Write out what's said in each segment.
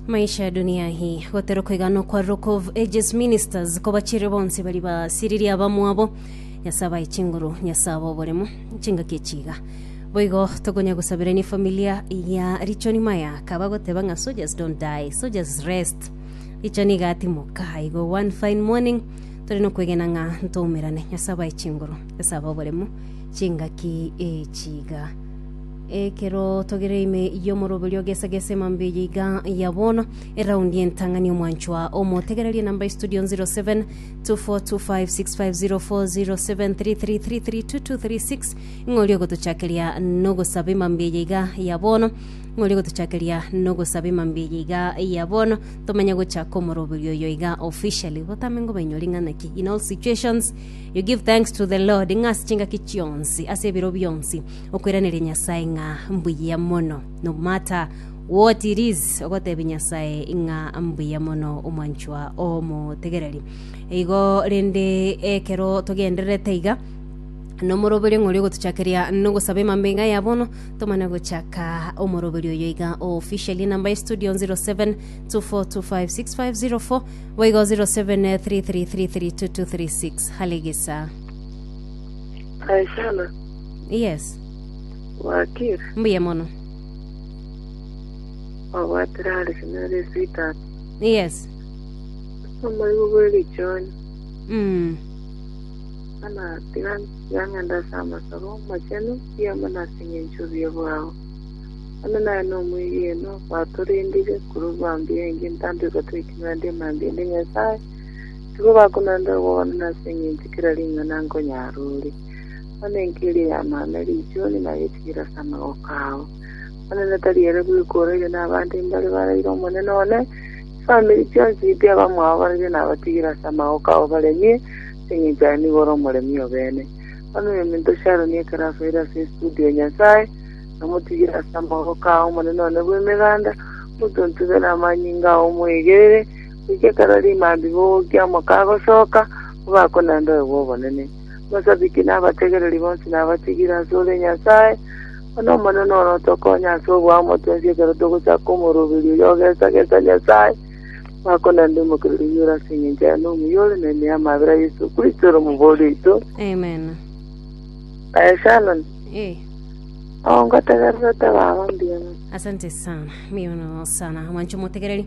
Maisha ya dunia hii gotero koiga nokwa Rock of Ages Ministers kobachire bonsi bari basiririe abamwabo Nyasae abaye chinguru Nyasae abo oboremo chingaki echiga boigo tokonya gosabirania familia ya Richoni Maya kaba goteba ng'a soldiers don't die soldiers rest Richoni igatimoka aigo one fine morning tore nokwegena ng'a ntoumerane Nyasae abaye chinguru Nyasae abo oboremo chingaki echiga Ekero togereire ime y'omoroberio ogesagesa emambia eye iga ya bono, eraundi y'entang'ani omwanchwa omotegererie namba ya studio 07 2425604073332236 ng'ori ogotochakeria nogosaba emambia eye iga ya bono ng'ori ogotochakeria nogosaba emambia eye iga ya bono tomanye gochaka omoroberio oyo iga officially gotame ngoba inyori ng'ana ki in all situations you give thanks to the lord ng'ase chingaki chionsi ase ebiro bionsi okoiraneria Nyasae ng'a mbuya mono. No matter what it is, ogotebia Nyasae ng'a mbuya mono omwanchwa omotegereri. Igo rende ekero togendererete iga, nomoroberio ng'ori ogotochakeria nogosaba emambe iga ya bono tomane gochaka omoroberio oyo iga official enamba ya studio 0724256504 boigo 0733332236 halegesa Aisana Yes. Wakir. Mbuya mono. Wabwatire are sinari sweetheart. Yes. Omorigo bw'erichoni. Mm. Ana tiga yang'enda ase amasabo amachenu yamo nasing'encho bia bwao. Ano naye nomwegeno batorendire korwa bambia engi ntambe batweki bande emambia ende Nyasaye. Tigo bakonanda ogogona nasing'encho kera ring'ana nkonyara ore. Bono enki eria ya maame riichuni na yetiira ase amagoko ao. Omonene tari ere bweka oraire nabande imbare baraire Omonene one, chifamiri chionsi chiti abamwabo baraire nabatigire ase amagoko abo baremie, ase engencho aye nigo ore omoremi obene. Bono oyominto Sharoni ekero asoire ase esitudi ya Nyasae, namotigire ase amagoko a Omonene one bw'Emeganda, omotuntube namanyinga ao omoegerere, goika ekero rimaambi bogokia omoka agosoka, obakonende oyo bw'obonene. Omosabiki na abategereri bonsi nabatigire ase ore Nyasae, Bono Omonene ore otokonye ase oboamwa twensi ekero togosaka omoroberio oyo ogesagesa Nyasae, Omwaka onande omokereri oyoire ase engencho yaye nomuya ore neme y'amabera Yesu Kristo ore omoboori oito. Amen. Aye Shannon, Eh. oo ngotegererete baba mbuya mono. Asante sana. Mbiya mono sana. Mwancho motegereri.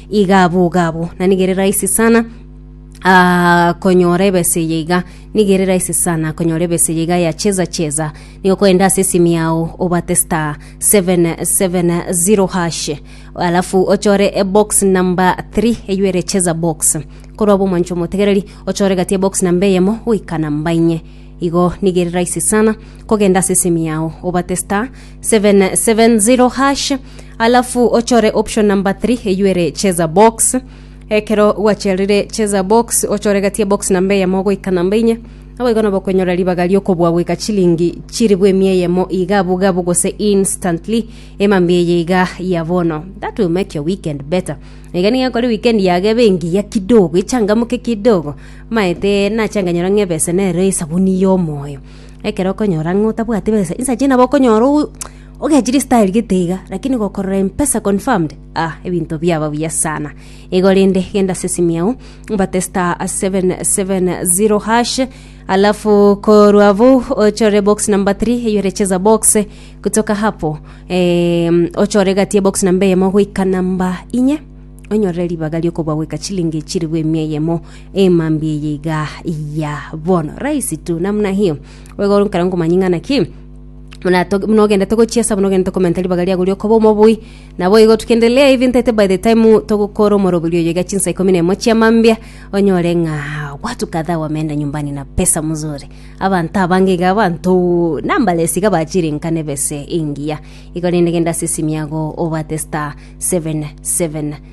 Igabo igabo, na nigo ere rahisi sana ah, konyora ebesa eye iga nigo ere rahisi sana konyora ebesa eye iga ya cheza cheza nigo koenda ase esimu yao obate star 770 hash alafu ochore ebox number 3 eyo ere cheza box korwa abo omoncho omotegereri ochore gati ebox namba eyemo goika namba inye igo nigo ere rahisi sana kogenda ase esimu yao obate star 770 hash Alafu ochore option number three eyio ere cheza box. Ekero gwacherire cheza box ochore gati ya box namba eyemo goika namba inye. Naboigo nabo okonyora ribaga riokobua goika chilingi chiribu emia eyemo iga bugabu gose instantly emambia eye iga ya bono. That will make your weekend better. Iga niga ekore weekend yago ebe engiya kidogo echangamuke kidogo maete nache anganyora ng'a ebesa nero esabuni yomoyo. Ekero okonyora ng'a otabwati besa insa chinde nabo okonyora Ogechire style gete iga, lakini gokorora Mpesa confirmed ah ebinto biaba buya sana. Igo rende genda ase esimi yao obate star 770 hash alafu korwa abo ochore box number 3 eyore cheza box kutoka hapo em, ochore gati ya box number eyemo goika namba inye onyorere ribaga riokoba goika chilingi chiribu emia eyemo emambi eye iga ya bono rahisi tu namna hiyo wegoro nkara nkomanying'ana ki Muna to- muna ogendete gochiesa muna ogendete komenta ribaga riago riokoba omobui naboigo tukendelea hivi ntaete by the time togokora omorobiri oyo iga chinsa ikomi na emo chia mambia onyore ng'a watu kadhaa wameenda nyumbani na pesa mzuri abanto abange iga abanto numberless iga bachire nka nebese engiya igo rende genda ase esimi yago obwate star 77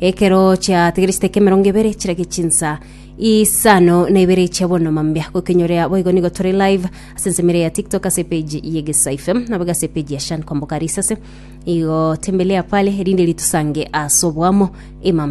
Ekero chiategeresete eke emerongo ebere chirage chinsa isano na ibere chia bono mambia gokenyorea boigo nigo tore live ase ensemo ere ya tiktok ase page ye gesa fm nabo ase page ya shan kwamboka risase igo tembelea pale erinde ritusange ase oboamo emambia